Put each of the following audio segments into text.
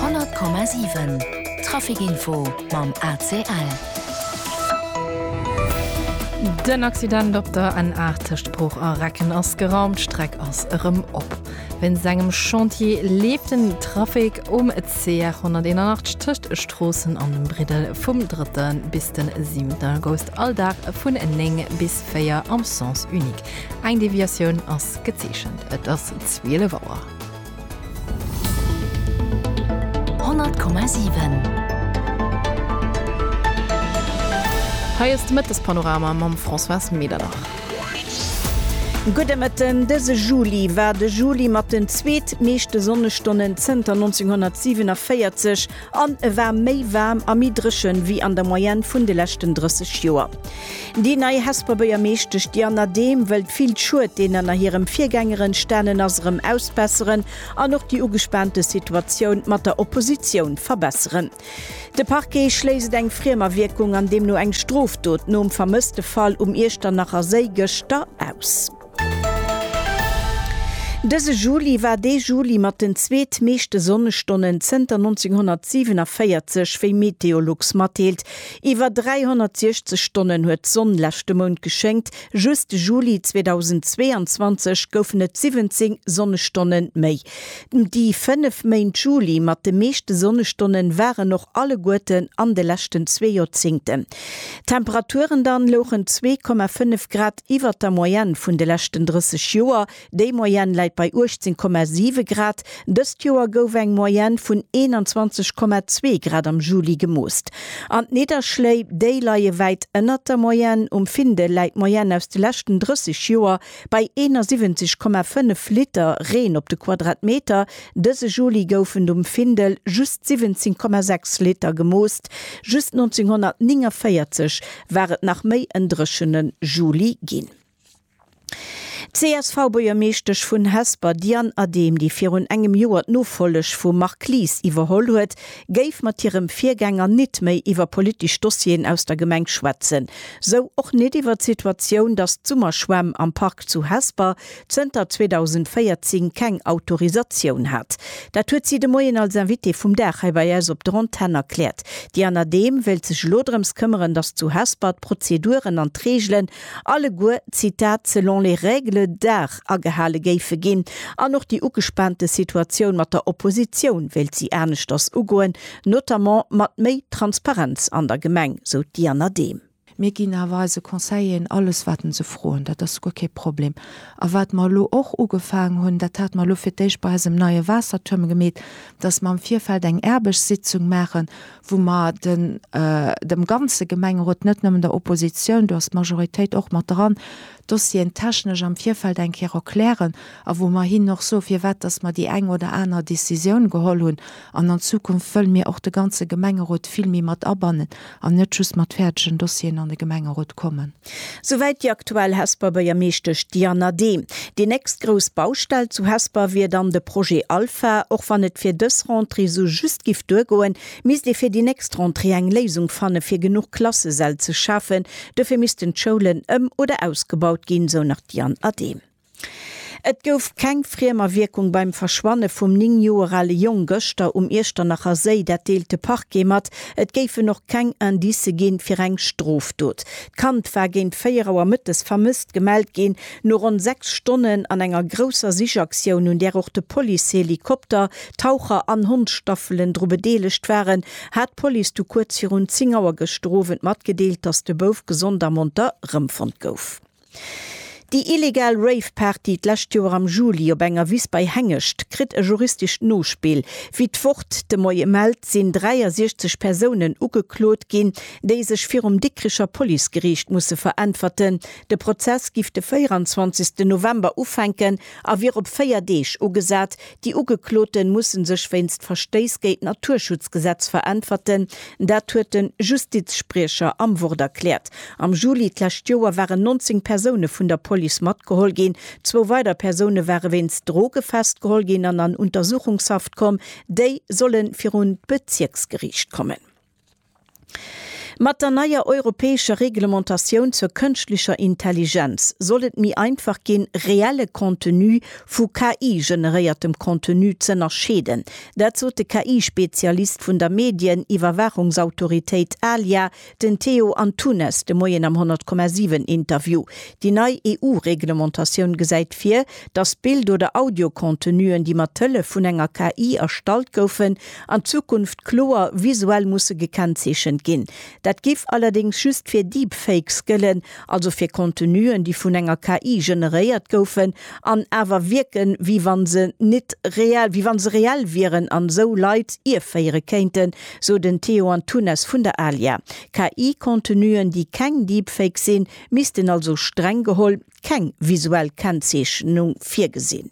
100,7 Trafic-Info mam ACL. Den Accident op der N8 tëscht Bruch a Recken ass geraumt, d'Streck ass erëm op. Wéinst engem Chantier leeft den Trafic um CR 181 tëscht Stroossen an dem Briddel vum 3. bis de 7. August all Dag vun 9 bis 4 am Sens unique. Eng Deviatioun ass gezeechent. Et ass 12 Auer. 100 Komma 7. Hei ass de Mëttespanorama mam Françoise Medernach. Gudde Mëtten. Dëse Juli war de Juli mat den zweet meeschte Sonnestonnen zënter 1947. An e war méi waarm a méi dréchen wéi an der Moyenne vun de leschten 30 Joer. Déi nei Hesper Bëiermeeschtesch Diana Dehm wëllt vill Schued deen ënner hirem Virgänger entstanen ass erëm ausbesseren an och déi ugespaante Situatioun mat der Oppositioun verbesseren. De Parquet schléisst eng Friemerwierkung an deemno eng Strofdot nom Vermësstefall um Iechternacher Séi gëschter aus. Dëse Juli war dee Juli mat den zweet meeschte Sonnestonnen zënter 1947, wéi Meteolux matdeelt. Iwwer 360 Stonnen huet d'Sonn leschte Mount geschéngt, just de Juli 2022 goufen et 17 Sonnestonne méi. Déi fënnef Méint Juli mat de meeschte Sonnestonne waren och alleguerten an de leschten zwee Joerzéngten. D'Temperaturen dann louchen 2,5 Grad iwwert der Moyenne vun de leschten 30 Joer, déi Moyenne läit bei 18,7 Grad, dëst Joer gouf eng Moyenne vun 21,2 Grad am Juli gemoosst. An d'Nidderschléi, déi leie wäit ënnert der Moyenne, um Findel läit d'Moyenne aus de leschten 30 Joer bei 71,5 Liter Reen op de Quadratmeter, Dëse Juli goufen d'um Findel just 17,6 Liter gemoost, just 1949 war et nach méi en dréchene Juli ginn. D'CSV-Buergermeeschtesch vun Hesper Diane Adehm, déi virun engem Joer d'Nofolleg vum Marc Lies iwwerholl huet, géif mat hirem Virgänger nit méi iwwer politesch Dossieren aus der Gemeng schwätzen, sou och nit iwwer d'Situatioun, datt d'Summerschwämm am Park zu Hesper zënter 2014 keng Autorisatioun hat. Dat huet si de Moien als Invitée vum Dag hei bei eis op der Antenn erkläert. D'Diana Dehm wéilt sech elo drëms këmmeren, datt zu Hesper d'Prozeduren an d'Reegelen alleguer, Zitat, selon les règles d'art agehale géife ginn. An och déi ugespaante Situatioun mat der Oppositioun wéilt si aneschters ugoen, notamment mat méi Transparenz an der Gemeng, sou d'Diana Dehm. Mir ginn awer eise Conseilleren alles, wat en se froen, dat ass guer kee Problem. A wat mer elo och ugefaangen hunn, dat hate mer elo fir d'éischt bei eisem neie Waassertuerm gemeet, dass mer am Virfeld eng Aarbechtssitzung maachen, wou mer den, dem ganze Gemengerot, net nëmmen der Opposition, do ass d'Majoritéit och mat dran, d'Dossieren technesch am Virfeld eng Kéier erklären a wou mer hinnen och soe firwat dass mer déi eng oder aner Décisioun geholl hunn, An an Zukunft wëlle mir och de ganze Gemengerot vill méi mat abannen an net just mat fäerdegen Dossieren an de Gemengerot kommen. Souwäit déi aktuell Hesper Bëiermeeschtesch Diana Dehm. Déi nächst grouss Baustell zu Hesper wier dann de Projet Alpha. Och wann et fir dës Rentrée sou just giff duergoen, misst ee fir déi nächst Rentrée eng Léisung fanne fir genuch Klassesäll ze schafen. Dofir missten d'Schoulen ëm oder ausgebaut ginn, sou nach d'Diane Adehm. Et gouf keng Friemawierkung beim Verschwanne vum 9 Joer ale Jong gëschter um Iechternacher Séi. Dat deelt de Parquet mat. Et géifen och keng Indicë ginn, fir eng Strofdot. D'Kand war géint 4 Auer mëttes vermësst gemellt ginn. No ronn 6 Stonnen an enger grousser Sichaktioun, un där och de Policehelikopter, Taucher an Hondsstaffelen dru bedeelegt waren, hat d'Police du kuerz virun 10 Auer gëschter Owend matgedeelt, dass de Bouf gesond a monter erëmfonnt gouf. Déi illegal Rave-Party d'lescht Joer am Juli op enger Wiss bei Hengescht kritt e juristescht Nospill. Wéi d'Wort de Moie mellt, sinn 63 Persounen ugeklot ginn, déi sech virum Dikricher Policegeriicht musse veräntwerten. De Prozess giff de 24 November ufänken a wier op 4 Deeg ugesat. Déi Ugekloten mussen sech wéinst Verstéiss géint d'Naturschutzgesetz veräntwerten. Dat huet de Justizspriecher am Wort erkläert. Am Juli d'lescht Joer waren 19 Persoune vun der Police matgeholl ginn. Zwou weider Persoune ware wéinst Droge festgeholl ginn an an Untersuchungshaft komm. Déi solle virun d'Bezierksgeriicht kommen. Mat der neier europäescher Reglementatioun zur kënschtlecher Intelligenz soll et méi einfach ginn, reelle Contenu vu KI-generéiertem Contenu z'ënnerscheeden. Dat sot de KI-Spezialist vun der Medien-Iwwerwaachungsautoritéit ALIA, den Theo Antunes, de Moien am 100,7 Interview. Déi nei EU-Reglementatioun gesäit vir, datt Bild oder Audio-Contenuen, déi mat Hëllef vun enger KI erstallt goufen, an Zukunft kloer visuell musse gekennzeechent ginn. Dat géif allerdéngs just fir Deepfakes gëllen, also fir Contenuen, déi vun enger KI generéiert goufen an awer wierken, wéi wa se net reell, wéi wa se reell wieren an esou Leit ierféiere kéinten, sou den Theo Antunes vun der Alia. KI-Contenuen, déi keng Deepfakes sinn, missten also streng geholl keng visuell Kennzeechnung virgesinn.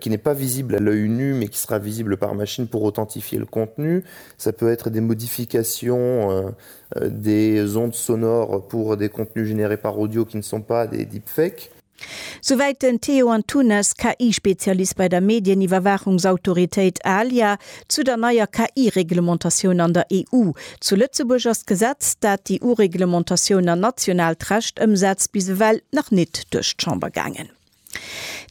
qui n'est pas visible à l'œil nu mais qui sera visible par machine pour authentifier le contenu. Ça peut être des modifications des ondes sonores pour des contenus générés par audio qui ne sont pas des deepfakes. Souwäit den Théo Antunes, KI-Spezialist bei der Medieniwwerwaachungsautoritéit ALIA, zu der neier KI-Reglementatioun an der EU. Zu Lëtzebuerg ass d'Gesetz, dat déi EU-Reglementatioun an nationaalt Recht ëmsetzt, bis ewell nach nit duerch d'Chamber gaangen.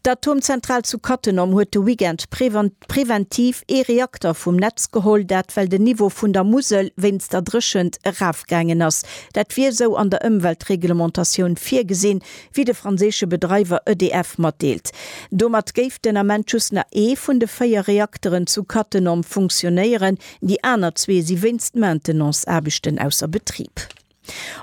D'Atomzentral zu Cattenom huet de Weekend preventiv ee Reakter vum Netz geholl, dat well den Niveau vun der Musel wéinst der Dréchent erafgaangen ass. Dat wier esou an der Ëmweltreglementatioun virgesinn, wéi de franséische Bedreiwer EDF matdeelt. Domat géif den Ament just nach ee vun de véier Reakteren zu Cattenom funktionéieren, déi aner zwee si wéinst Maintenance-Aarbechten ausser Betrib.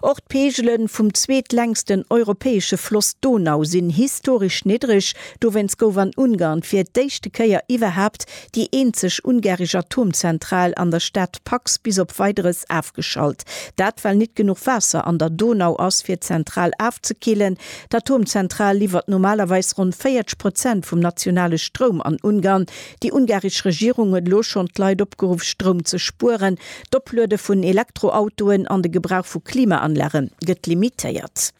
Och d'Peegele vum zweetlängsten europäesche Floss Donau sinn historesch niddreg. Dowéinst gouf an Ungarn fir d'éischte Kéier iwwerhaapt déi eenzeg ungarisch Atomzentral an der Stad Paks bis op Weideres afgeschalt. Dat well nit genuch Waasser an der Donau ass fir d'Zentral afzekillen. D'Atomzentral liwwert normalerweis ronn 40 Prozent vum nationale Stroum an Ungarn. Déi ungaresch Regierung huet elo schonn d'Leit opgeruff, Stroum ze spueren. D'Opluede vun Elektroautoen an de Gebrauch vu Klimaanlage gëtt limitéiert.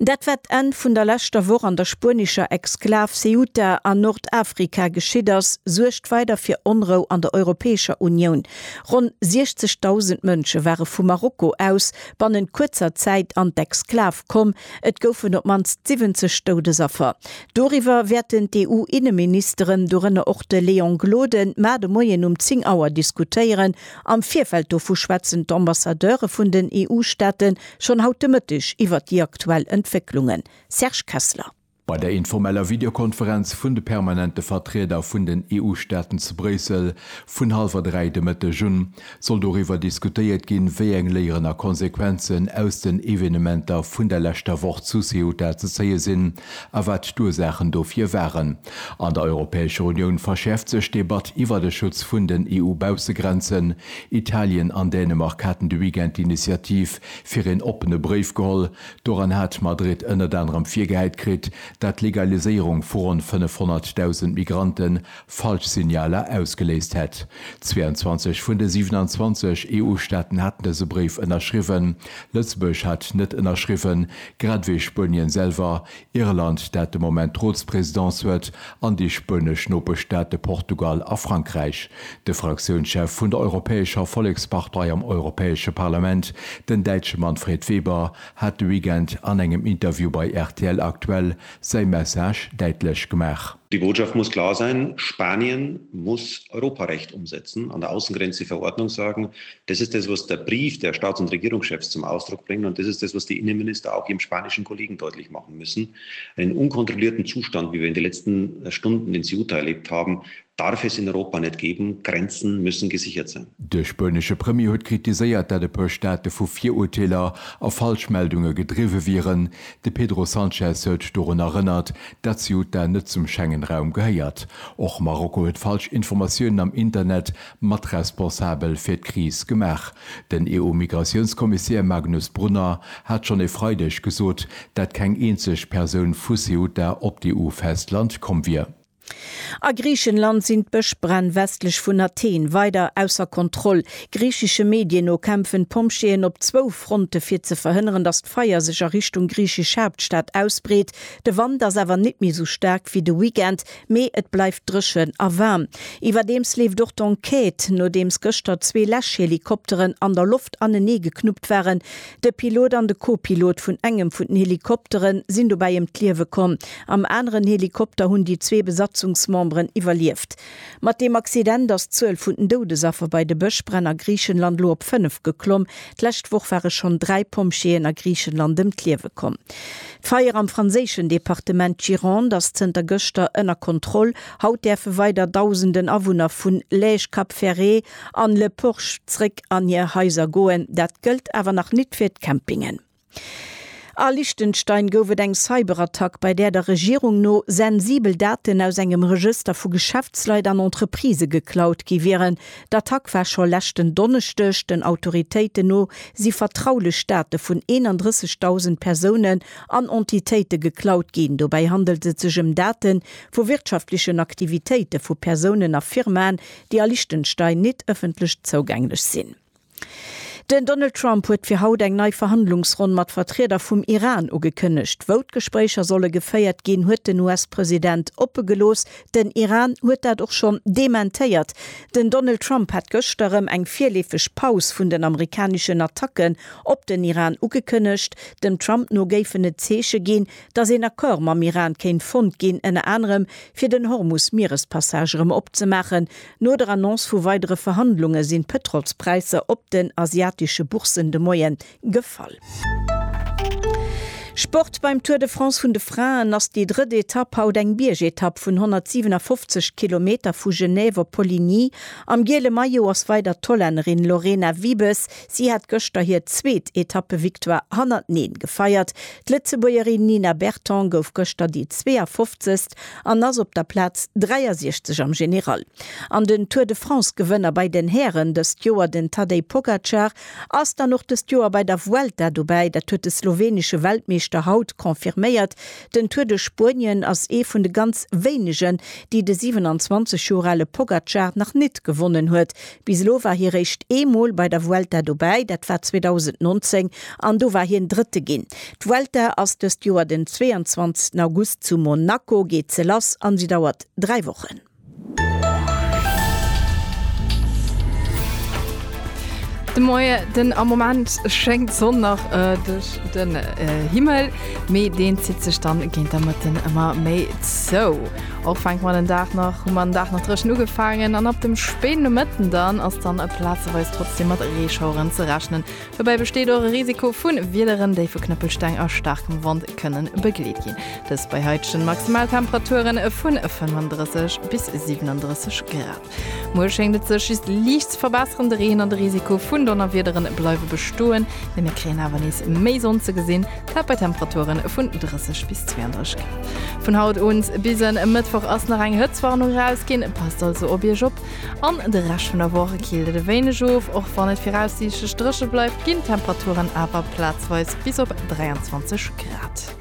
Dat war d'Enn vun der leschter Woch an der spuenescher Exklav Ceuta a Nordafrika geschitt ass, suergt weider fir Onrou an der Europäescher Unioun. Ronn 60.000 Mënsche ware vu Marokko aus bannent kuerzer Zäit an d'Exklav komm, Et goufen op d'mannst 70 Doudesaffer. Doriwwer wäerten d'EU-Inneministeren, dorënner och de Léon Gloden, mar de Moien um 10 Auer diskutéieren. Am Virfeld dovu schwätzen d'Ambassadeure vun den EU-Staate schonn haut de Mëtteg iwwert déi aktuell Entwécklungen. Serge Kessler. Bei der informeller Videokonferenz vun de permanente Vertrieder vun den EU-Staaten zu Bréissel vun hallwer dräi de Mëtteg un, soll doriwwer diskutéiert ginn, wéi eng Léieren a Konsequenzen aus den Evenementer vun der leschter Woch zu Ceuta ze zéie sinn a wat d'Ursaachen dofir waren. An der Europäescher Unioun verschäerft sech d'Debatt iwwer de Schutz vun den EU-Baussegrenzen. Italien an Dänemark haten de Weekend d'Initiativ fir een oppene Bréif geholl, Doran hat Madrid ënnert anerem virgehäit kritt, dat d'Legaliséierung vu ronn 500.000 Migrante falsch Signaler ausgeléist hätt. 22 vun de 27 EU-Staaten haten dëse Bréif ënnerschriwwen. Lëtzebuerg hat net ënnerschriwwen, grad ewéi Spuenien selwer, Irland, dat de Moment d'Rotspresidence huet, an déi spuenesch Nopeschstaate Portugal a Frankräich. De Fraktiounschef vun der Europäescher Vollekspartei am Europäesche Parlament, den Däitsche Manfred Weber, hat de Weekend an engem Interview bei rtl Aktuell säi Message däitlech gemaach. Déi Botschaft muss klar säin, Spanien muss Europarecht ëmsetzen, an der Aussengrenz déi Verordnung sagen, Das ist das, was der Brief der Staats und Regierungschefs zum Ausdruck bringt, und das ist das, was die Innenminister auch ihrem spanischen Kollegen deutlich machen müssen. Einen unkontrollierten Zustand, wie wir in den letzten Stunden in Ceuta erlebt haben, darf es in Europa net geben. Grenzen müssen gesichert sein. De spuenesche Premier huet kritiséiert, dat e puer Staate vu Virurteeler a Falschmeldunge gedriwwe wieren. De Pedro Sanchez huet dorun erënnert, dat Ceuta net zum Schengen-Raum gehéiert. Och Marokko huet falsch Informatiounen am Internet matresponsabel fir d'Kris gemaach. Den EU-Migratiounskommissär Magnus Brunner hat schonn e Freideg gesot, dat keng eenzeg Persoun vu Ceuta op d'EU-Festland komm wier. A Griichenland sinn d'Bëschbränn westlech vun Athen weider ausser Kontroll. Griichesche Medien no kämpfen d'Pompjeeën op zwou Fronte fir ze verhënneren, datt d'Feier sech a Richtung griichesch Haaptstad ausbreet. De Wand ass awer net méi sou staark wéi de Weekend, Mee et bleift dréchen a waarm. Iwwerdeems leeft och d'Enquête, nodeems gëschter zwee Läschhelikopteren an der Loft anenee geknuppt waren. De Pilot an de Co-Pilot vun engem vun den Helikoptere sinn dobäi ëm d'Liewe komm. Am aneren Helikopter hunn déi zwee Besatzungsmemberen iwwerlieft. Mat deem Accident ass d'Zuel vun den Doudesaffer bei de Bëschbränn a Griichenland elo op fënnef geklomm. D'lescht Woch ware schonn dräi Pompjeeën a Griichenland ëm d'Liewe komm. D'Feier am franséischen Departement Gironde ass zënter gëschter ënner Kontroll. Haut däerfe weider Dausenden Awunner vun Lège, Cap Ferret an Le Porch zréck an hir Haiser goen. Dat gëllt awer nach nit fir d'Campingen. A Liechtenstein gouf et eng Cyberattack, bei där der Regierung no sensibel Daten aus engem Regëster vu Geschäftsleit an Entreprisë geklaut gi wieren. D'Attack war scho leschten Donneschdeg. Den Autoritéiten no si vertraulech Date vun 31.000 Persounen an Entitéite geklaut ginn. Dobäi handelt et sech ëm Date vu wirtschaftlechen Aktivitéite vu Persounen a Firmaen, déi a Liechtenstein nit ëffentlech zougänglech sinn. Den Donald Trump huet fir haut eng nei Verhandlungsronn mat Vertrieder vum Iran ugekënnegt. Wou d'Gespréicher solle geféiert ginn, huet den US-President oppe gelooss. Den Iran huet dat och schonn dementéiert. Den Donald Trump hat gëschter erëm eng virleefeg Paus vun den amerikaneschen Attacken op den Iran ugekënnegt. Dem Trump no géifen et Zeeche ginn, datt een Accord mam Iran kéint fonnt ginn, ënner anerem fir den Hormus-Mierespassage erëm opzemaachen. No der Annonce vu weidere Verhandlunge sinn d'Pëtrolspräisser op den asiatesche Bourssen de Moie gefall. Sport, Beim Tour de France vun de Fraen ass déi drëtt Etapp haut eng Biergetapp vun 157 Kilometer vu Genève op Poligny. Am giele Maillot ass weider d'Hollännerin Lorena Wiebes. Si hat gëschter hir zweet Etappevictoire hannerteneen gefeiert. D'Lëtzebuergerin Nina Berton gouf gëschter déi 52. Weltrekord an ass op der Plaz 63 am General. An den Tour de France-Gewënner bei den Hären dëst Joer, den Tadej Pogacar, ass dann och dëst Joer bei der Vuelta dobäi. Dat huet de slowenesche Weltmeeschter haut confirméiert. Den Tour duerch Spuenien ass ee vun de ganz wéinegen, déi de 27 Joer ale Pogacar nach nit gewonnen huet. Bis elo war hie réischt ee Mol bei der Vuelta dobäi, dat war 2019 an do war hien Drëtte ginn. D'Vuelta ass dëst Joer den 22 August, zu Monaco geet se lass an si dauert dräi Wochen. De Moie den, am Moment schéngt d'Sonn nach duerch den Himmel, mee deen zitt sech dann géint der Mëtten ëmmer méi zou. Och fänkt man den Dag nach hu man Dach nach dreschen ugefaangen an ab dem speen no Mëtten dann ass dann e plazeweis trotzdem mat Reeschaueren ze rechnen. Dobäi besteet och e Risiko vun Wiederen, déi vu Knëppelsteng a staarkem Wand kënnen begleet ginn. Dëst bei heitegen Maximaltemperaturen vun 35 bis 37 Grad. Muer schéngt et sech just liicht ze verbesseren, de Reen an de Risiko vun Donnerwiederen bleiwe bestoen, mee mir kréien awer nees méi Sonn ze gesinn, dat bei Temperature vun 30 bis 32 Grad. Vun haut un bis en Mëttwoch ass nach eng Hëtztwarnung erausginn, passt also op Iech op. An de Rescht vun der Woch killt et e wéineg of. Och wann et viraussiichtlech dréche bleift, ginn d'Temperaturen awer plazweis bis op 23 Grad.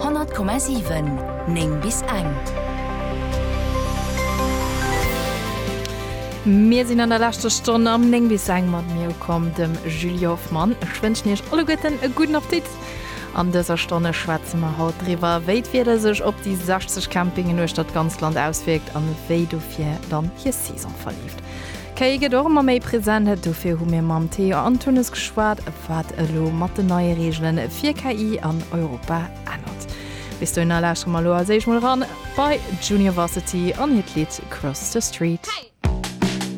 100,7 9 bis eng. Mir sinn an der leschter Stonn am 9 bis eng mat mir ukomm, dem Julie Hoffmann. Ech wënschen Iech alleguerten e gudden Appetit. An dëser Stonne schwätze mer haut driwwer, wéi d'Wieder sech op déi 60 Campingen uechtert d'ganzt Land auswierkt an wéi dofir dann hir Saison verleeft. Kéi gëtt och ëmmer méi present, dofir hu mir mam Théo Antunes geschwat, wat elo mat den neie Reegele fir KI an Europa ännert. Bis dohinner lauschtere mer elo als éischt mol eran bei Juniorvarsity an hiert Lidd Cross the Street.